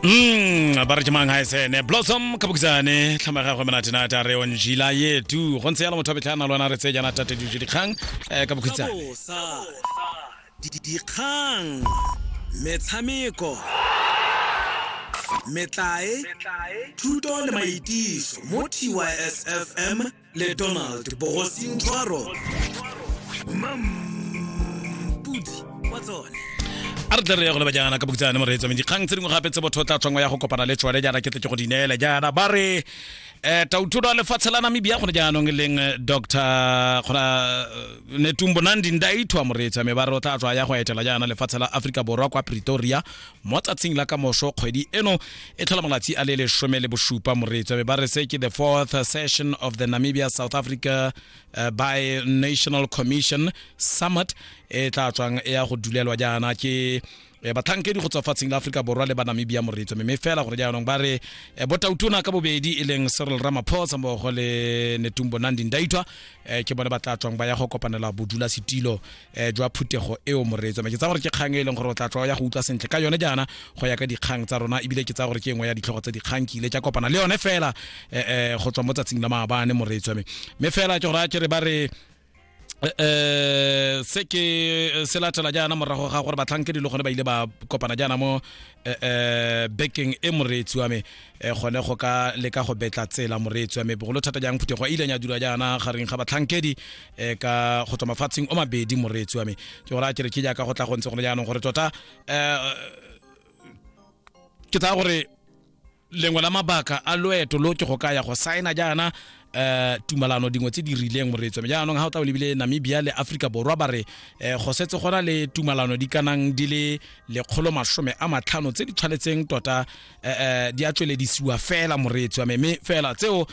Mm, ba re ke mang ha esene blossom kabukisane tlhama gagwe menate na ta re on jila yetu go ntse yalo motho a betlha na lwana re tse jana tate dijo dikgang eh ka bokhitsane bosa dikgang metshameko metlae thuto le maitiso mo tysfm le donald bogosintshwaro mampudi wa tsone a re tle re ye go leba jaana ka bokitsane mo reetsomeng dikgang tse dingwe gape tse botho o tla tshwango ya go kopana le tsone jaana ke tle ke go di neele jaana ba re um tauthuto a lefatshe la namibia gone jaanong e leng eh, dr gona eh, netumbo nandi ndaithwa moreetsame ba re o tla tswa ya go etela jaana lefatshe la aforika borwa kwa pretoria mo tsatsing la ka moso kgwedi eno e tlhola malatsi a le lesome le bosupa moretswa be ba re se ke the fourth session of the namibia south africa uh, by national commission summit e tla tswang e ya go dulelwa jaana ke eh, batlhankedi go tswa fatsheng la aforika borwa le ba namibia moretso mme fela gore jaanong ba re eh, botautona ka bobedi e leng cyril ramaphosa mmogo le netumbo nandi ndaitwa eh, ke bone ba tla tswang ba ya go kopanela bodulasetilo eh, jwa phuthego eo moreetso me ke tsa gore ke kgang e leng gore o tla tlwa ya go utlwa sentle ka yone jaana go ya ka dikgang tsa rona ebile ke tsa gore ke engwe ya ditlhogo tsa dikgang ke ile ka kopana le yone fela eh, eh, go tswa mo tsatsing la maabane moreetso me mme fela ke gore a kere ba re eh se ke eh, se latela jaana morago ga gore batlhankedi le gone ba ile ba kopana jaana mo eh, eh bekeng e moreetsi wa me e gone go ka leka go betla tsela moreetsi wa mebogolo thata jang phuthego a ile nya dira jaana gareng ga batlhankedi um ka go tswa mafatsheng o mabedi moreetsi wa me ke gore a kere ke jaaka go tla go ntse gone jaanong gore tota um ke tsaya gore lengwe la mabaka a loeto lo ke go ka ya go saena jaana um tumalano dingwe tse di rileng moreetso mme jaanong ga o tla o lebile namibia le aforika borwa ba re um go setse gona le tumalano di kanang di le lekgolo masome a matlhano tse di tshwanetseng tota um di a tsweledisiwa fela moreetso mme fela tseo